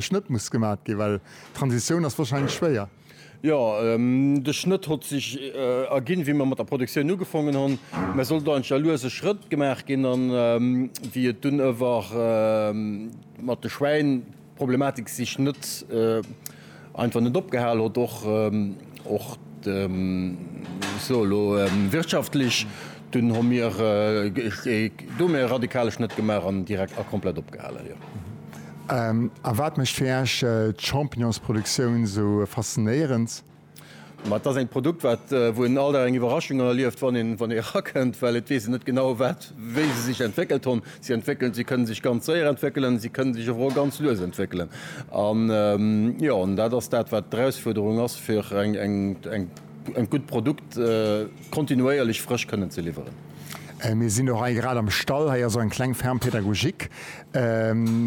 Schnëtt muss gemat gin, well d'Transitioun ass wahrscheinlech schwéier. Jo, de Schnëtt hott sech ergin, wéi mer mat der Produktioun ugefongen hon. Mä sollt eigentlech a luese Schrëtt gemaach gin. A wéi et dun ëwer mat de Schwäin, d'Problematik sech nët einfach nët opgehal hott, och, och, muss elo soe wirtschaftlech, Dunn hu mir do méi e radikale Schnëtt gemaach an direkt a komplett opgehalen, jo. A wat mécht fir Iech d'Champignonsproduktioun esou faszinéierend? Ma et ass eng Produkt, wat, wou een all Dag eng Iwwerraschung erlieft, wann een, wann ee rakënnt, well et weess een net genau, wat, wéi se sech entwéckelt hunn. Si entwéckelen, si kënne sech ganz séier entwéckelen, si kënne sech awer och ganz lues entwéckelen. An, jo, an dat ass dat, wat d'Erausfuerderung ass, fir eng, eng, eng, eng gutt Produkt, kontinuéierlech frësch kënnen ze liwweren. Mir sinn och hei grad am Stall, hei ass och eng kleng Ferme pédagogique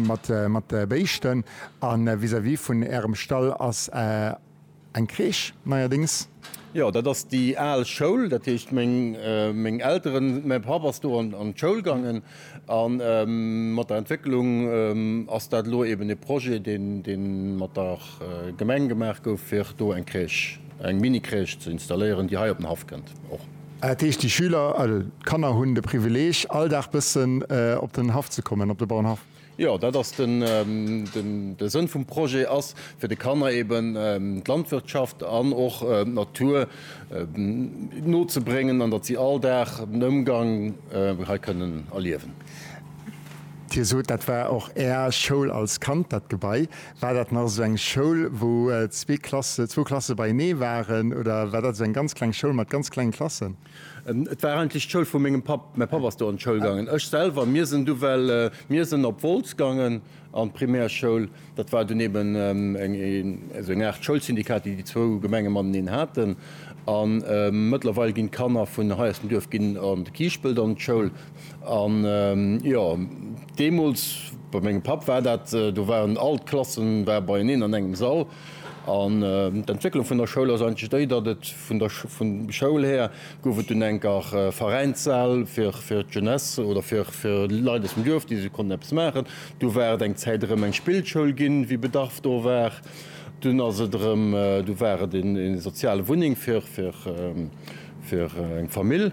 mat mat Béischten a vis-à-vis vun Ärem Stall ass eng Crèche neierdéngs. Jo, dat ass déi al Schoul, dat heescht meng meng Elteren, mäi Papp ass do an d'Schoul gaangen. A mat der Entwécklung ass dat elo eben e Projet, dee mat der Gemeng gemaach gouf, fir do eng Crèche, eng Mini-Crèche ze installéieren, déi hei op den Haff kënnt och. Dat heescht, déi Schüler, also d'Kanner hunn de Privileg, all Dag bëssen op den Haff ze kommen, op de Bauernhaff? Jo, dat ass den de Sënn vum Projet ass fir de Kanner eben d'Landwirtschaft an och d'Natur nozebréngen an datt si all Dag den Ëmgang hei kënnen erliewen. Dir sot dat war och Är Schoul als Kand dat Gebai. War dat nach esou eng Schoul wou zwee Klasse zwou Klasse beienee waren oder war dat esou eng ganz kleng Schoul mat ganz klengen Klassen? Et war eigentlech d'Schoul vu mengem Papp. Mäi Papp ass do an d'Schoul gaangen. Ech selwer, mir sinn du well, mir sinn op Wolz gaangen an d'Primärschoul. Dat war dunn eben eng, also eng Aart Schoulsyndikat, déi déi zwou Gemenge mateneen haten. A mëttlerweil ginn d'Kanner vun hei aus dem Duerf ginn an de Kiischpelt an d'Schoul. An, jo, deemools, bei mengem Papp war dat, do waren all d'Klassen, war beieneen an engem Sall. An d'Entwécklung vun der Schoul ass eigentlech déi, datt et vun der vun Schoul här gouf et dunn enker Veräinssäll fir fir d'Jeunesse oder fir fir Leit aus dem Duerf, déi se konnten eppes maachen. Du war et eng Zäit erëm eng Spillschoul ginn, wéi Bedarf do war. Dunn ass et erëm du war et een ee soziale Wunneng fir fir Fir eng Famill.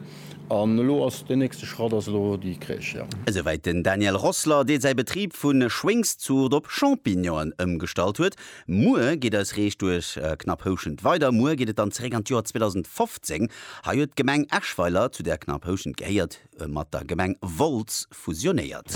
An elo ass den nächste Schratt ass elo déi Crèche, jo. Esouwäit den Daniel Rossler, dee säi Betrib vu Schwéngszurt op Champignonen ëmgestallt huet. Muer geet eis Rees duerch Knapphouschent weider. Muer geet et dann zeréck an d'Joer 2015. Hei huet d'Gemeng Eschweiler, zu där Knapphouschent gehéiert, mat der Gemeng Wolz fusionéiert.